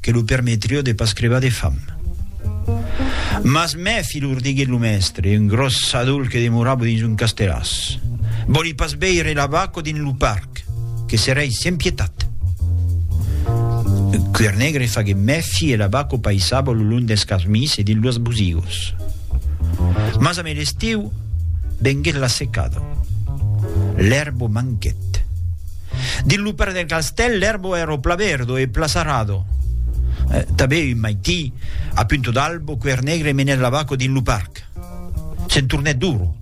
que lo permetrio de pas crebar de fam. Mas mèfi lor diguèt lo mèstre, un gròs sadol que demorava dins un casteràs. Vòli pas veire la vaca dins lo parc, que serei sens pietat. Cuèr Negre faguèt mèfi e la vaca paissava lo long dels casmis e dins los bosigos. Mas amé l'estiu venguèt la secada. L'èrba manquèt. Dins lo parc del castèl l'èrbo èra pla verdo e pla sarrado. Eh, tanben un maití, a punto d'albo, Quèr Negre menèt la vaca dins lo parc. Se'n tornèt d'oro.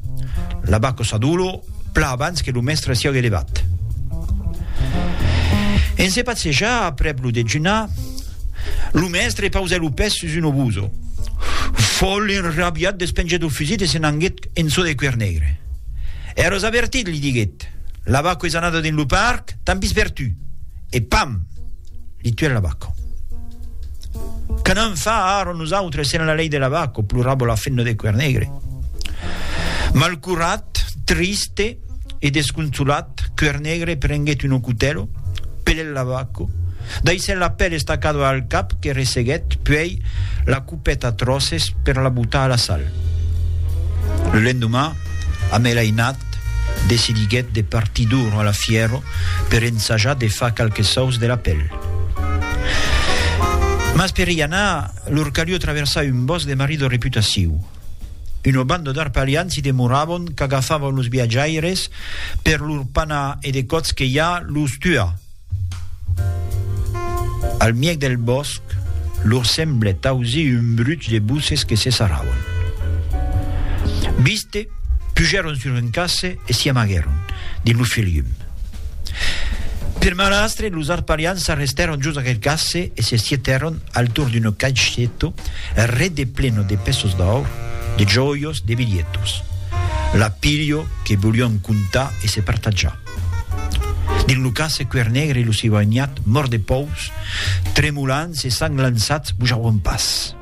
La vaca s'adoló pla abans que lo mèstre siague levat. En se passejar aprèp lo dejunar, lo mèstre pausèt lo pès sus un obuso. Fòl enrabiat despengèt lo fusit e se n'anguèt en çò de Quèr Negre. Èras avertit, li diguèt. L'abaco es anada dins lo parc, t'an vist per tu, e pam! Li tuèt l'abaco. Que n'an fa ara nosautres sen la lei de l'abaco? plorava la femna de cuèr negre. Malcurat, triste e desconsolat, cuèr negre prenguèt un ocutèlo, pelèt l'abaco, daissèt la pèl estacada al cap que resseguèt, puèi la Pèt a tròces per la botar a la sal. Lo lendomà, Amèl Ainat decidiguèt de partir d'Ouro a la Fièro per ensajar de far qualques sòus de la pèl. Mas per i anar, lor calió traversar un bòsc de marido reputaciu. Una banda d'arpalians i de morabons qu'agafava los viatjaires per lor panar e de còps que ja los tuar. Al mièg del bòsc, lor semblèt ausir un bruch de boces que se sarravan. Viste, pujèron sur un casse e s'i amaguèron dins lo filium. Per malastre, los arpalians s'arrestèron jos aquel casse e se sietèron al torn d'un caixeto rede pleno de pesos d'aur, de jòios, de bilhetos. Lapilho que volián contar e se partajar. Dins lo cas se cuer negre lo sivanhat mòrt de pòus tremolants e sang lançats vos auron pas.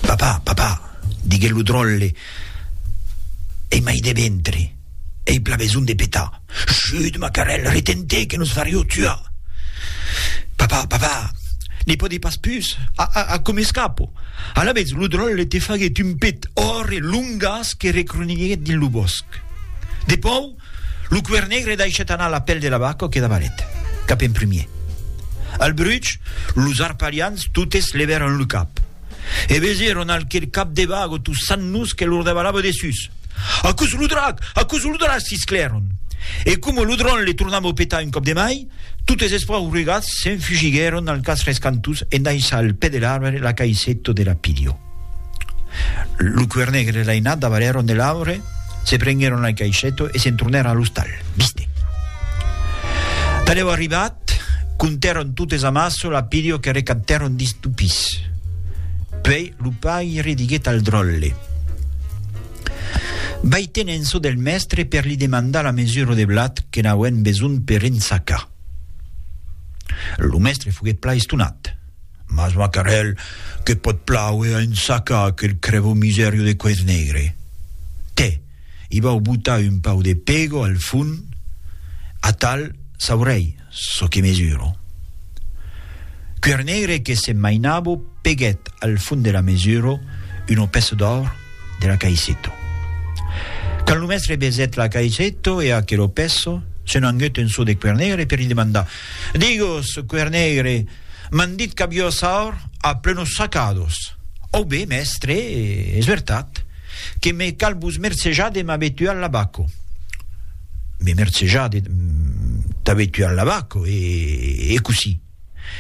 Papà, papà, diguèt lo dròlle, ei mai de ventre, ei pla besonh de petar. Chut, macarèl, retén-te que nos farió tuar! Papà, papà, ne pòdi pas pus, a, a, a, com escapo? Alavetz lo dròlle te faguèt un pet òrre, long, un gas que recroniguèt dins lo bòsc. Depau, lo cuèr negre daishèt anar la pèl de la vaca que davalèt, cap en primièr. Al bruch, los arpalians totes levèron lo cap, e vesèron alquel cap de vaga tossant-los que lor davalava dessús. Aquò's lo drac! Aquò's lo drac! sisclèron. E coma lo dron le tornava a petar un còp de mai, totes espaurregats s'enfugiguèron al cas rescantós en daishar al pè de l'arbre la caisseta de la pilha. Lo cuer negre e l'ainat davalèron de l'aure, se prenguèron al caishèto e se'n tornèron a l'ostal. Viste. Talèu arribat, contèron totes amassa çò lapideu que recaptèron dins lo pis. Puèi lo paire diguèt al dròlle, Vai ten en çò del mèstre per li demandar la mesura de blat que n'auem besonh per ensacar. Lo mèstre foguèt plan estonat. Mas macarèl, que pòt plàuer a un saca aquel crèvo misèrio de coèth negre? Tè, i vau botar un pau de pego al fon, atal saurèi çò que mesuro. Cuèr negre que se mainavo peguèt al fon de la mesuro una pèça d'òur de la caisseto. Quand lo mèstre besèt la caisseto e aquelo pèço, se n'anguèt un çò de Cuèr negre per li demandar, Digos, Cuèr negre, M'an dit qu'avió saur a plenos sacados. Au be, mèstre, es vertat, que me cal vos mercejar de m'avetuar l'abaco. Me mercejar de t'avetuar l'abaco, e cossí?